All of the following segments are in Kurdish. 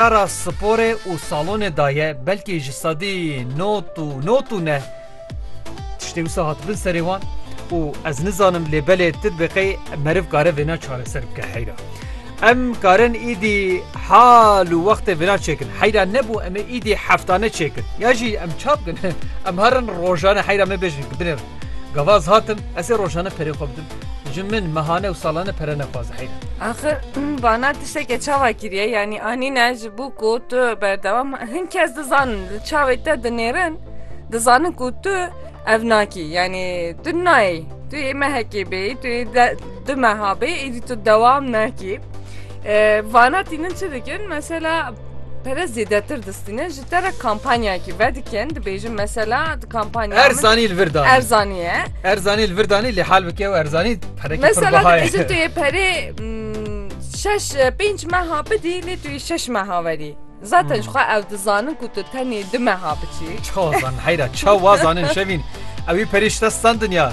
Ara sporê û salonê daye belkî ji sedî not û not û neh tiştê wisa hatibin serê wan û ez nizanim lê belê ti bi qey meriv kare vêna çareser bike heyra. Em karin îdî hal û wextê vêna çêkin. Heyra nebû em ê îdî heftane çêkin. Ya jî em ça bikin? Em herin rojane heyra me bêjin ki binêr gavaz hatim ez ê rojane perê xwe bidim. Ji min mehane û salane pere nexwaze heyran. Axir bana tiştekê çawa kiriye yanî anîne ji bo ku tu berdewam hin kes dizanin li çavê te dinêrin dizanin ku tu ev nakî yanî tu nayê tu yê mehekê bê tu yê du meha bê êdî tu dewam nakî vana tînin çi dikin mesela pere zêdetir distînin Dere kampanyayekî vedikin dibêjin mesela di kampanya min- Erzanî li vir danî. Erzanî ye. Erzanî li vir danî lê hal bike û Erzanî perekî pir Mesela biha ye. dibêjin tu yê perê mm, şeş pênc meha bidî lê tu yê şeş meha werî. Zaten Hmm. jixwe ew dizanin ku tu tenê du meha biçî. Çawa zanin heyra çawa zanin şevîn. Ewî perê şite standin ya.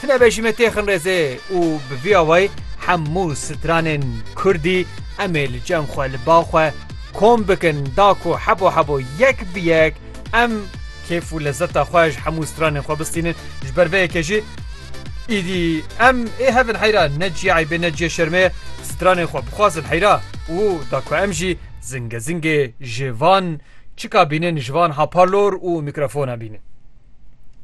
Tu nebêjî me tê xinrêzê û bi vî awayî hemû stranên kurdî em ê li cem xwe li ba xwe kom bikin da ku hebo hebo yek bi yek em kêf û lezeta xwe ji hemû stranên xwe bistînin ji ber vê yekê jî Îdî em ê hebin heyra ne cî eybê ne cî şermê ye stranên xwe bixwazin heyra û da ku em jî zingê zingê ji van çika bînin ji van hapalor û mîkrofona bînin.